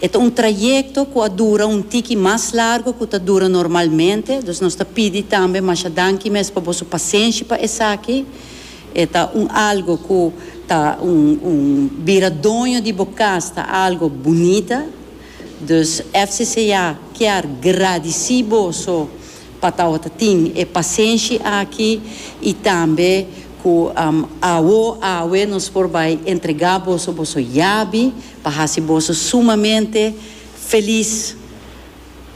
E ta un trayekto ku a dura un tiki mas largu ku ta dura normalmente, dus nos ta pidi tambe masha danki mes pa boso pasenshi pa esaki. E ta un algo ku ta un un bira doño di bo kas ta algo bunita. Dus FCCA kier gradisi boso pa tawata tin e pasenshi aki i tambe ku awo awe nos por bai entrega boso boso yabi Pa hasi boso sumamente felis.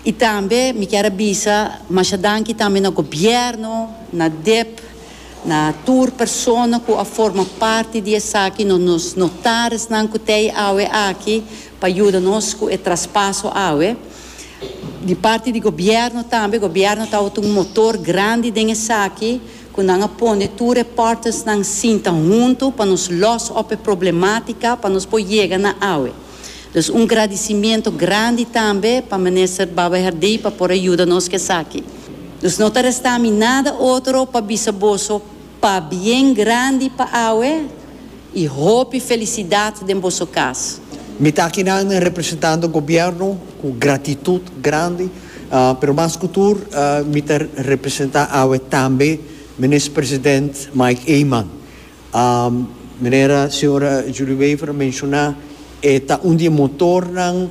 I tambe mi kier a bisa masha danki tambe na Gobierno, na dep, na tur persona ku a forma parti di esaki, no nos notaresnan ku ta ei awe aki pa yuda nos ku e traspaso awe. Di parti di Gobierno tambe, Gobierno tabata un motor grandi den esaki. ku nan a pone tur e partnersnan sinta huntu pa nos lòs op e problematika pa nos por yega na awe. Dus un gradisimentu grandi tambe pa Minister Baba Herdey pa por a yuda nos ku esaki. Dus no ta resta mi nada otro pa bisa boso pabien grandi pa awe i hopi felisidat den boso kas. Mi ta akinan representando Gobierno ku gratitut grandi. Pero mas cu tur mi ta representa awe tambe Minis President Mike Eman. Manera Sra. Julie Wever a menciona e ta un di e motornan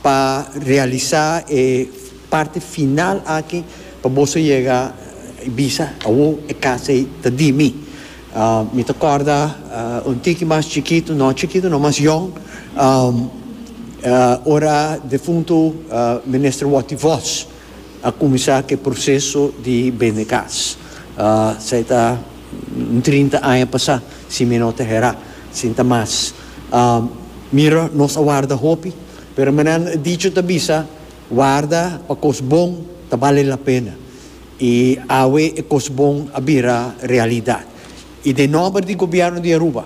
pa realisa e parti final aki pa boso yega y bisa awo e casa ey ta di mi. Mi ta kòrda un tiki mas chikitu, no chikitu no, mas yòn, ora defuntu Minister Watty Vos a kuminsá ku e proseso di bende kas. Esei ta un trinta aña pasá, si mi no ta herá, sin ta mas. Mira, nos a warda hopi, pero mi nan a dicho, ta bisa, warda pa kos bon ta bale lapena. I awe e kos bon a bira realidat. I den nòmber di Gobièrnu di Aruba,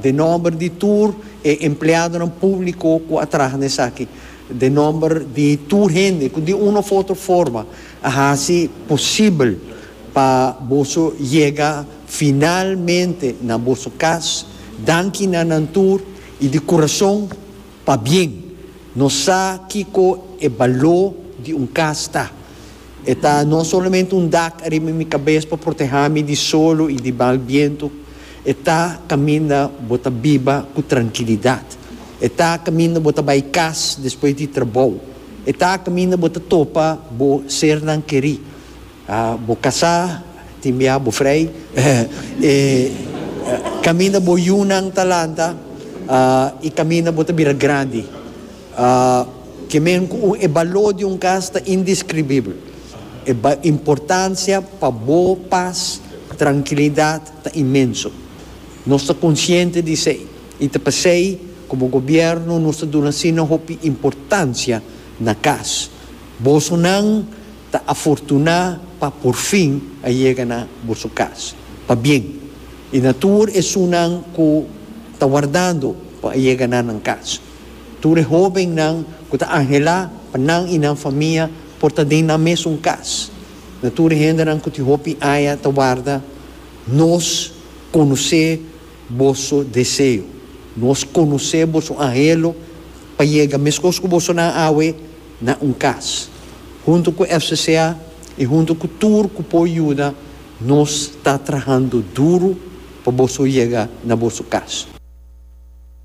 den nòmber di tur e empleadonan públiko ku a traha na esaki, den nòmber di tur hende ku di un òf otro forma a hasi posibel pa boso yega finalmente na boso kas, danki na nan tur i di kurason pabien. Nos sa kiko e baló di un kas ta. E ta no solamente un dak ariba mi kabes pa protehá mi di solo i di bal bientu, e ta kaminda bo ta biba ku trankilidat. E ta kaminda bo ta bai kas despues di trabou. E ta kaminda bo ta topa bo sernan kerí. Bo kasá, tin bia bo frei, e kaminda bo yunan ta lanta i kaminda bo ta bira grandi. Ke men ku un. E baló di un kas ta indiskribibel. E importansia pa bo pas, trankilidat, ta inmenso. Nos ta konsiente di esei i ta p'esei komo gobièrnu nos ta duna asina hopi importansia na kas. Boso nan ta afortuná pa por fin a yega na boso kas pa bien i na tur esunnan ku ta wardando pa a yega na nan kas. Tur e hóbennan ku ta anhelá pa nan i nan famia por ta den nan mesun kas. Na tur e hendenan ku tin hopi aña ta warda, nos konosé boso deseo. Nos konosé boso anhelo pa yega meskos ku boso nan awe na un kas. Huntu ku FCCA i huntu ku tur ku por yuda, nos ta trahando duru pa boso yega na boso kas.